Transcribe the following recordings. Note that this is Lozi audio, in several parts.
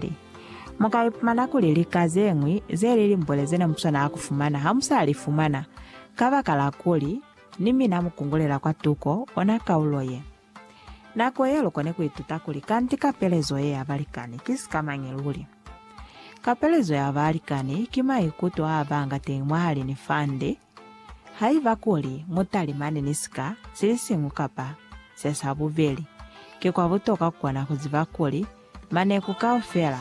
Bibele. Mu ka ipumana kuli lika ze ñwi ze li limbwele ze ne mu swanela ku fumana ha mu sa li fumana, kabakala kuli ni mina mu kungulela kwa tuko ona kaulo ye. Nako ye lu kone ku ituta kuli kanti kapelezo ye ya balikani ki sikamañi luli. Kapelezo ya balikani ki maikuto a ba nga teñi mwahali ni fande, Haiba kuli mu talimani ni sika silisiñwi kapa se sa bubeli, ki kwa butoka ku kona ku ziba kuli maneku kaufela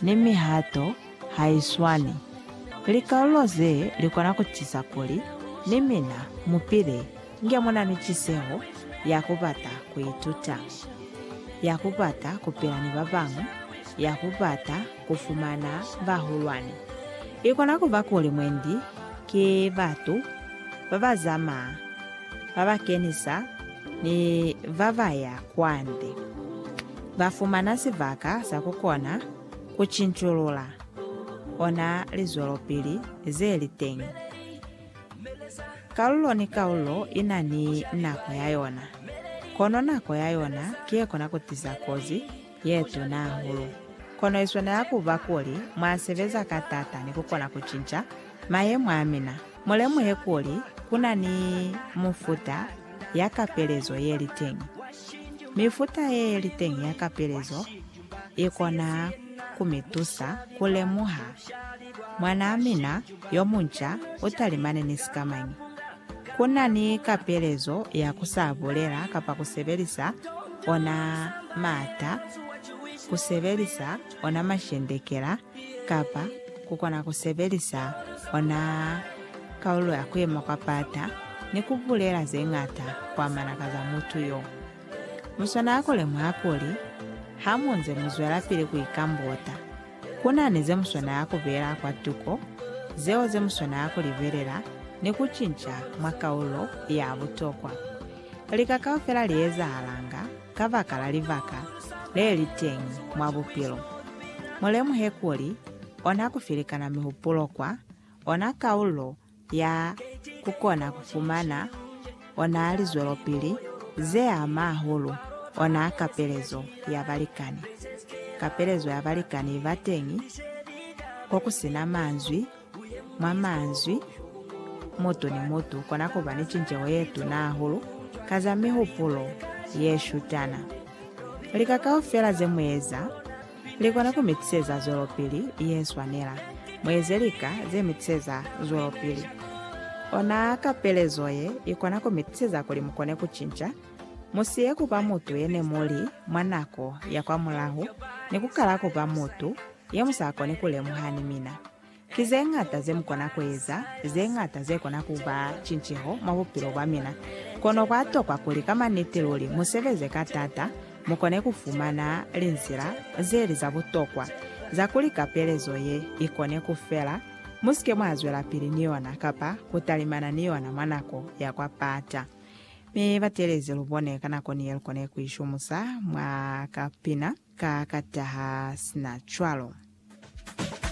ni mihato ha i swani. Likalulo ze li kona ku tiisa kuli ni mina mu pile inge mu na ni tiseho ya ku bata ku ituta, ya ku bata ku pila ni ba bañwi, ya ku bata ku fumana bahulwani. I kona ku ba kuli mwendi ki batu ba ba zamaa, ba ba kenisa ni ba ba ya kwande. Ba fumana sibaka sa ku kona ku cinculula ona lizwelopili ze li teñi. Kalulo ni kalulo i na ni nako ya yona, kono nako ya yona ki ye kona ku tiza kozi. ye tuna hahulu. Kono i swanela ku ba kuli mwa sebeza ka t'ata ni ku kona ku cinca mayemo a mina. Mu lemuhe kuli ku na ni mufuta ya kapelezo ye li teñi. Mifuta ye ye li teñi ya kapelezo i kona ku mi tusa ku lemuha mwanaa mina yo munca u talimane ni sikamañi. Ku na ni kapelezo ya ku sa bulela kapa ku sebelisa ona maata, ku sebelisa ona mashendekela, kapa ku kona ku sebelisa ona kalulo ya ku yema kwa paata ni ku bulela ze ñata ku amana ka za mutu yo. Mu swanela ku lemuha kuli, hamunze mu zwelapili ku ikambota, Ku na ni ze mu swanela ku beela kwa tuko, zeo ze mu swanela ku libelela ni ku cinca mwa kaulo ya butokwa. Lika kaufela li ezahalanga kabakala libaka le li teñi mwa bupilo. Mu lemuhe kuli ona ku filikana mihupulo kwa ona kaulo ya kukona kufumana ona lizwelopili zeama hahulu ona kapelezo ya balikani. Kapelezo ya balikani iba teñi kokusina manzwi, mwa manzwi, mutu ni mutu ukona kuba ni cinceho yetuna hahulu ka za mihupulo yeshutana. Lika kaufela zemueza Li kona ku mi tiseza zwelopili ye swanela. Mu eze lika ze mi tiseza zwelopili. Ona kapelezo ye i kona ku mi tiseza kuli mu kone ku cinca. Mu siye ku ba mutu ye ne mu li mwa nako ya kwamulaho ni ku kala ku ba mutu ye mu sa koni ku lemuha ni mina. Ki ze ñata ze mu kona ku eza, ze ñata ze kona ku ba cinceho mwa bupilo bwa mina. Kono kwa tokwa kuli ka maniti luli mu sebeze ka t'ata, mu kone ku fumana linzila ze li za butokwa za kuli kapelezo ye i kone ku fela, mu si ke mwa zwelapili ni yona kapa ku talimana ni yona mwa nako ya kwa pata. Mi ba teelezi lu bone ka nako ni ye lu kone ku i shumusa mwa ka pina ka ka taha sina cwalo.